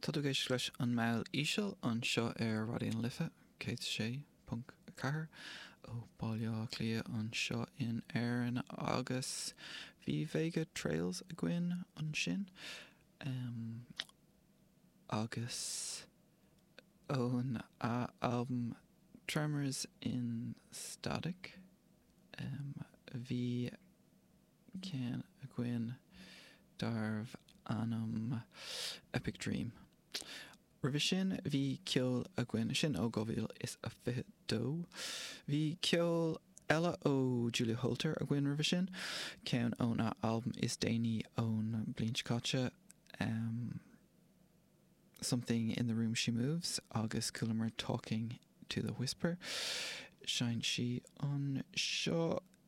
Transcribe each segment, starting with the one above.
Tá tú ag éisteacht leis An Meall Íseal anseo ar Raidió na Life 106.4 ó Bhaile Átha Cliath anseo in Éirinn agus bhí Vega Trails againn ansin agus óna albam Tremors in Static bhí ceann againn darbh ainm Epic Dream. Roimhe sin bhí ceol againn, sin ó 2022. Bhí ceol eile ó Julia Holter againn roimhe sin, ceann óna albam is déanaí ón bliain seo caite, Something in the Room She Moves agus chualamar Talking to the Whisper, sheinn sí anseo.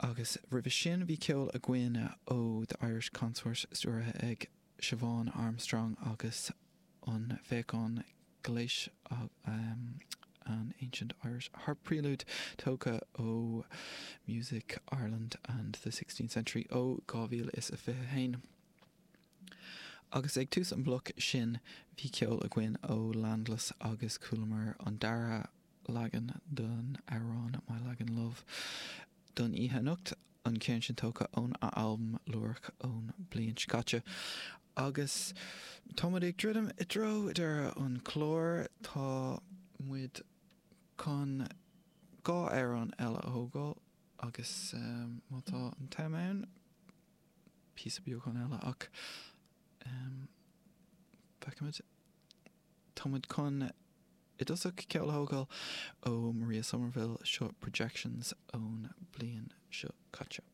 Agus roimhe sin bhí ceol againn ó The Irish Consort stiúraithe ag Siobhán Armstrong agus an Féachain Gléis An Ancient Irish Harp Prelude tógtha ó Music Ireland and the Sixteenth Century ó 2021. Agus ag tús an bloc sin bhí ceol againn ó Landless agus chualamar an dara leagan den amhrán My Lagan Love don oíche anocht, an ceann sin tógtha óna albam Lúireach ón bliain seo caite. Agus tá muid ag druidim i dtreo deireadh an clár, tá muid chun dhá amhrán eile a thógáil agus má tá an t-am ann, píosa beagán eile ach feicfimid. Tá muid chun i dtosach ceol a thógáil ó Maria Somerville, seo Projections ón bliain seo caite.